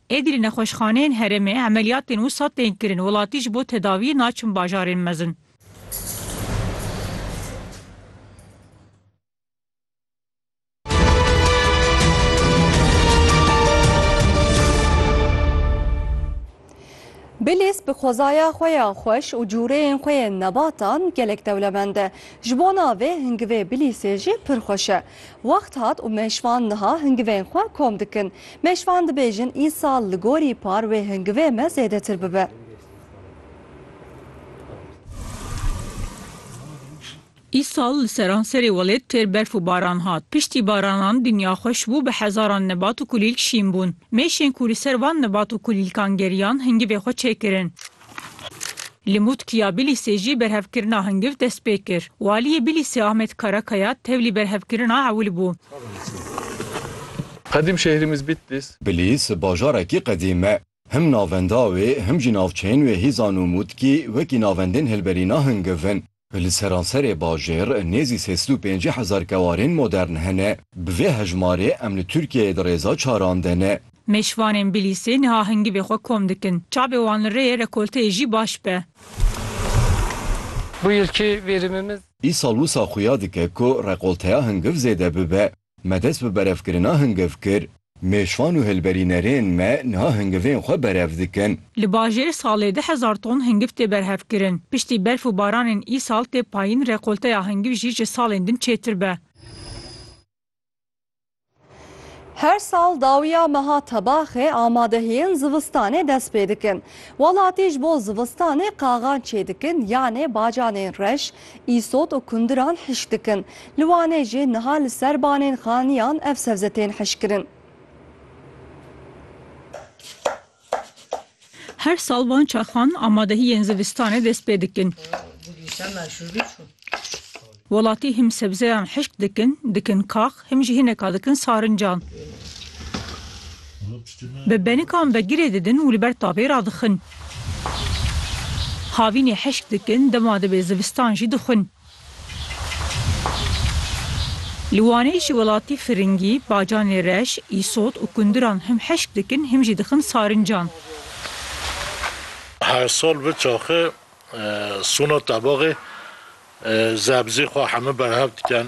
Êdî li nexweşxaneyên herêmê emeliyatên wisa tên kirin, welatî ji bo tedawiyê naçin bajarên mezin. Bilîs bi xwezaya xwe ya xweş û cûreyên xwe yên nebatan gelek dewlemend e. Ji bo navê hingivê Bilîsê jî pir xweş e. Wext hat û mêşvan niha hingivên xwe kom dikin. Mêşvan dibêjin îsal li gorî par wê hingivê me zêdetir bibe. Îsal li seranserê welêt têr berf û baran hat. Piştî baranan dinya xweş bû bi hezaran nebat û kulîlk şîn bûn. Mêşên ku li ser van nebat û kulîlkan geriyan hingivê xwe çêkirin. Li Mûtkiya Bilîsê jî berhevkirina hingiv dest pê kir. Waliyê Bilîsê Ahmet Karakaya tevlî berhevkirina ewil bû. Qedîm şehrimiz Bitlis. Bilîs bajarekî qedîm e. Him navenda wê him jî navçeyên wê Hîzan û Mûtkî wekî navendên hilberîna hingiv in. Li seranserê bajêr nêzî sê sed û pêncî hezar kewarên modern hene. Bi vê hejmarê em li Tirkiyeyê di rêza çaran de ne. Mêşvanên Bilîsê niha hingivê xwe kom dikin. Çavê wan li rêyê rekolteyê jî baş be. Bu yilki verimimiz. Îsal wisa xuya dike ku rekolteya hingiv zêde bibe. Me dest bi berevkirina hingiv kir. Mêşvan û hilberînerên me niha hingivên xwe berev dikin. Li bajêr salê du hezar ton hingiv tê berhevkirin. Piştî berf û baranên îsal tê payîn rekolteya hingiv jî ji salên din çêtir be. Her sal dawiya meha tebaxê amadehiyên zivistanê dest pê dikin. Welatî ji bo zivistanê qaxan çêdikin yanê bacanên reş, Îsot û kundiran hişk dikin. Li Wanê jî niha li ser banên xaniyan ev sebze tên hişkkirin. Her sal van çaxan amadehiyên zivistanê dest pê dikin. Welatî him sebzeyan hişk dikin, dikin kax, Him jî hineka dikin sarincan. Bi benikan ve girê didin û li ber tabê radixin. Havînê heşk dikin, dema dibe zivistan jî dixwin. Li Wanê ji welatî Firingî, Bacanê Reş, Îsot û Kundiran him heşk dikin, him jî dixin sarincan. Her sal vi çaxê sona tebaxê zebzê xwe heme berhev diken.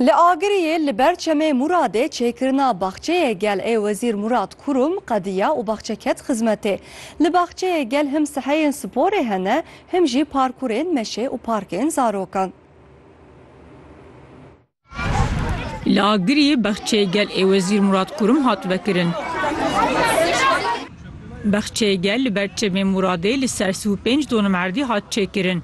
Li Agiriyê li ber Çemê Muradê çêkirina baxçeyê gel ê Wezîr Murad Kurum qediya û baxçe ket xizmetê. Li baxçeyê gel him seheyên sporê hene, him jî parkurên meşê û parkên zarokan. Li Agiriyê baxçeyê gel ê Wezîr Murad Kurum hat vekirin. Baxçeyê gel li ber Çemê Muradê li ser sî û pênc donim erdî hat çêkirin.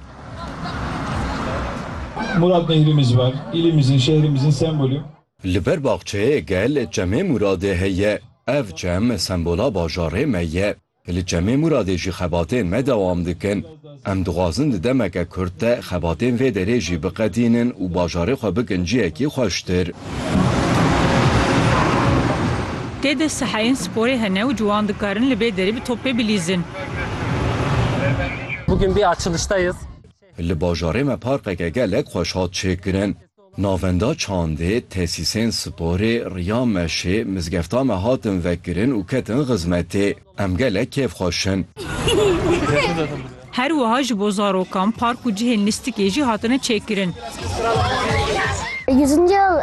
Murad nehrimiz var, ilimizin, şehrimizin sembolü. Li ber baxçeyê gel Çemê Muradê heye. Ev çem sembola bajarê me ye. Li Çemê Muradê jî xebatên me dewam dikin. Em dixwazin di demeke kurt de xebatên vê derê jî biqetînin û bajarê xwe bikin ciyekî xweştir. Tê de seheyên sporê hene û ciwan dikarin li bê derî bi topê bilîzin. Bugün bir açılıştayız. Li bajarê me parkeke gelek xweş hat çêkirin. Navenda çandê, tesîsên sporê, riya meşê, mizgefta me hatin vekirin û ketin xizmetê. Em gelek kêf xweş in. Her wiha ji bo zarokan park û cihên lîstikê jî hatine çêkirin. Yüzüncü yıl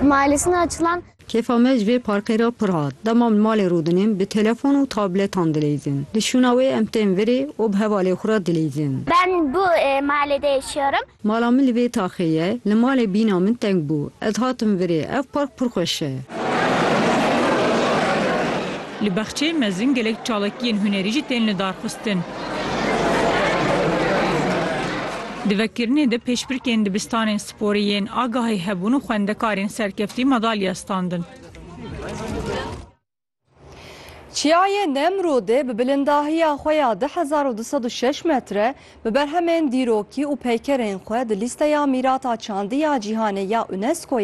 mahallesine açılan Kêfa me ji vê parkê re pir hat. Dema li malê rûdinên bi telefon û tabletan dileyzin. Li şûna wê em tên virê û bi hevalên xwe re dileyzin. Ben bu mahallede yaşıyorum. Mala min li vê taxê ye. Li malê bîna min teng bû. Ez hatim virê. Ev park pir xweş e. Li Baxçeyê Mezin gelek çalakiyên hunerî jî tên lidarxistin. Di vekirinê de pêşbirkên dibistanên sporê yên agahî hebûn û xwendekarên serkeftî madalya standin. Çiyayê Nemrodê bi bilindahiya xwe ya du hezar û du sed û şeş metre bi berhemên dîrokî û peykerên xwe di lîsteya Mîrata Çandî ya Cîhanê ya UNESCO'yê